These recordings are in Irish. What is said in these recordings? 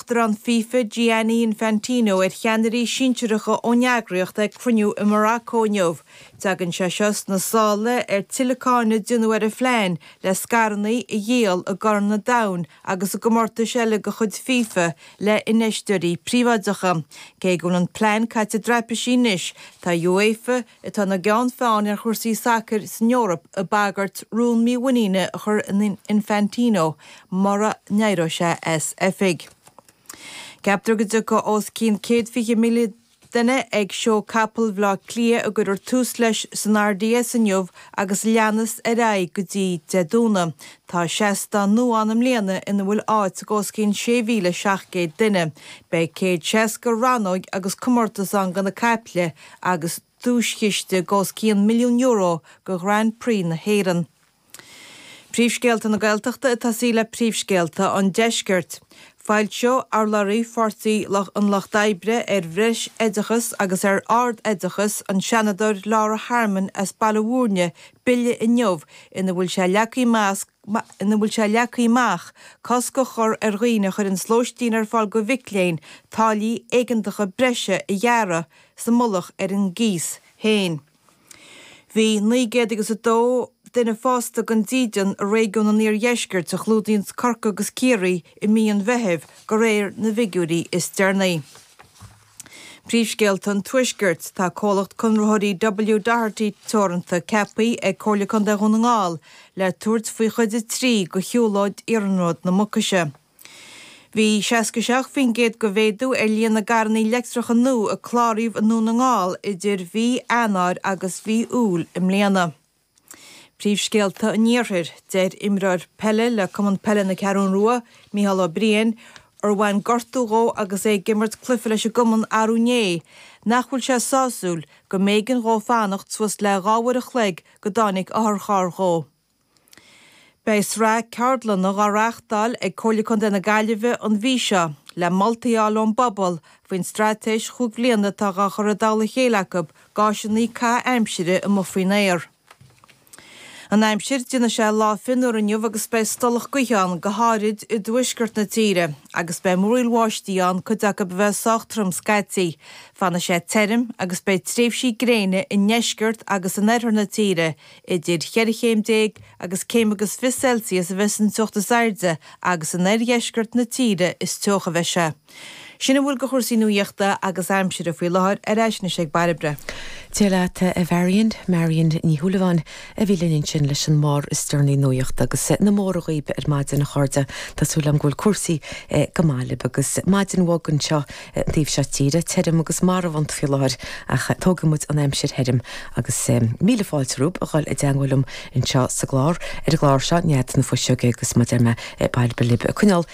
Uachtarán FIFA, Gianni Infantino, ar cheannairí sinsearacha ón eagraíocht ag cruinniú i Morocco inniu. Tagann sé seo sna sála ar thuilleadh cáineadh a déanadh ar an phlean le scaireanna a dhíol i gCorn an Domhain agus i gcomórtais eile de chuid FIFA le hinfheisteoirí príobháideacha. Cé go bhfuil an plean caite i dtraipisí anois, tá UEFA, atá ina gceann feáin ar chúrsaí sacair san Eoraip ag bagairt rún mímhuiníne a chur in Infantino mura n-éireoidh sé as oifig. Ceaptar go dtiocfaidh os cionn céad fiche míle duine ag Seó Capall Bhleá Cliath a gcuirfear tús leis san RDS inniu agus leanas ar aghaidh go dtí Dé Domhnaigh. Tá seastán nua ann i mbliana ina bhfuil áit ag os cionn sé mhíle seacht gcéad duine. Beidh céad seasca rannóig agus comórtas ann do na caiple, agus duaischiste go os cionn milliún euro go Grand Prix na hÉireann. Príomhscéalta na Gaeltachta ag tosaí le príomhscéalta an deiscirt. Foilseoidh urlabhraí Pháirtí an Lucht Oibre ar bhreisoideachas agus ar ardoideachas, an Seanadóir Laura Harmon as Baile Bhuirne, bille inniu ina bhfuil sé leagtha amach ina bhfuil sé leagtha amach cosc a chur ar dhaoine a chuireanns lóistín ar fáil go mhic léinn táillí éigeantacha breise a ghearradh sa mullach ar an gcíos héin. Bhí naoi gcéad agus a dó duine fásta gan dídean i réigiún an iardheiscirt, a chlúdaíonns Corcaigh agus Ciarraí, i mí an Mheithimh, go réir na bhfigiúirí is deireanaí. Príomhscéalta an Tuaiscirt. Tá comhlacht conraitheoirí W Doherty Teoranta ceapaí ag Comhairle Contae Dhún na nGall le tabhairt faoi Chuid a Trí go shiúlóid Iarnród na Mucaise. Bhí 67% go mhéadú ar líon na gcarrannaí leictreacha nua a cláraíodh i nDún na nGall idir mhí Eanáir agus mhí Iúil i mbliana. Príomhscéalta an Iarthair, Deir imreoir peile le Cumann Peile na Ceathrún Rua, Micheál Ó Briain, ar bhain gortú dhó agus é ag imirt cluiche leis an gcumann arú inné, nach bhfuil sé sásúil go mb'éigean dhó fanacht suas le dhá uair a chloig go dtáinig otharcharr dhó. Beidh sraith ceardlanna dhá reáchtáil ag Comhairle Contae na Gaillimhe an mhí seo, le moltaí a fháil ón bpobal faoin straitéis chúig bliana atá dhá chur i dtoll a chéile acu gá áiseanna caitheamh aimsire amuigh faoin aer. An aimsir, déanfaidh sé lá fionnuar inniu agus beidh stolladh gaoithe ann, go háirid i dtuaisceart na tíre, agus beidh múraíl bháistí ann, cuid acu a bheidh sách trom scaití. Fanfaidh sé tirim agus beidh tréimhsí gréine i ndeisceart agus in oirthear na tíre, idir cheithre chéim déag agus céim agus fiche Celsius a bheidh an teocht is airde agus in oirdheisceart na tíre is teocha a bheidh sé. Sin a bhfuil de chúrsaí nuaíochta agus aimsire faoi láthair, ar ais anois ag Bairbre. Dia leat, a Mharion. Marion Ní Shúilleabháin a bhí linn ansin leis an mbarr is deireanaí nuaíochta agus na móra dhaoib ar maidin, a chairde. Tá súil agam go bhfuil cúrsaí go maith libh agus maidin bhog anseo an taobh seo tíre. Tirim agus marbhánta faoi láthair ach tógfaidh muid an aimsir thirim agus míle fáilte romhaib a dhul i dteangmháil liom anseo sa gclár, ar an gclár seo, Nead na Fuiseoige agus mar a deir mé Bairbre libh coinneál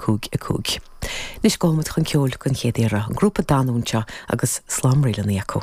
cúig a cúig. Anois gabhfaidh muid chun ceoil den chéad iarraidh, an grúpa Danú anseo agus slám ríleanna acu.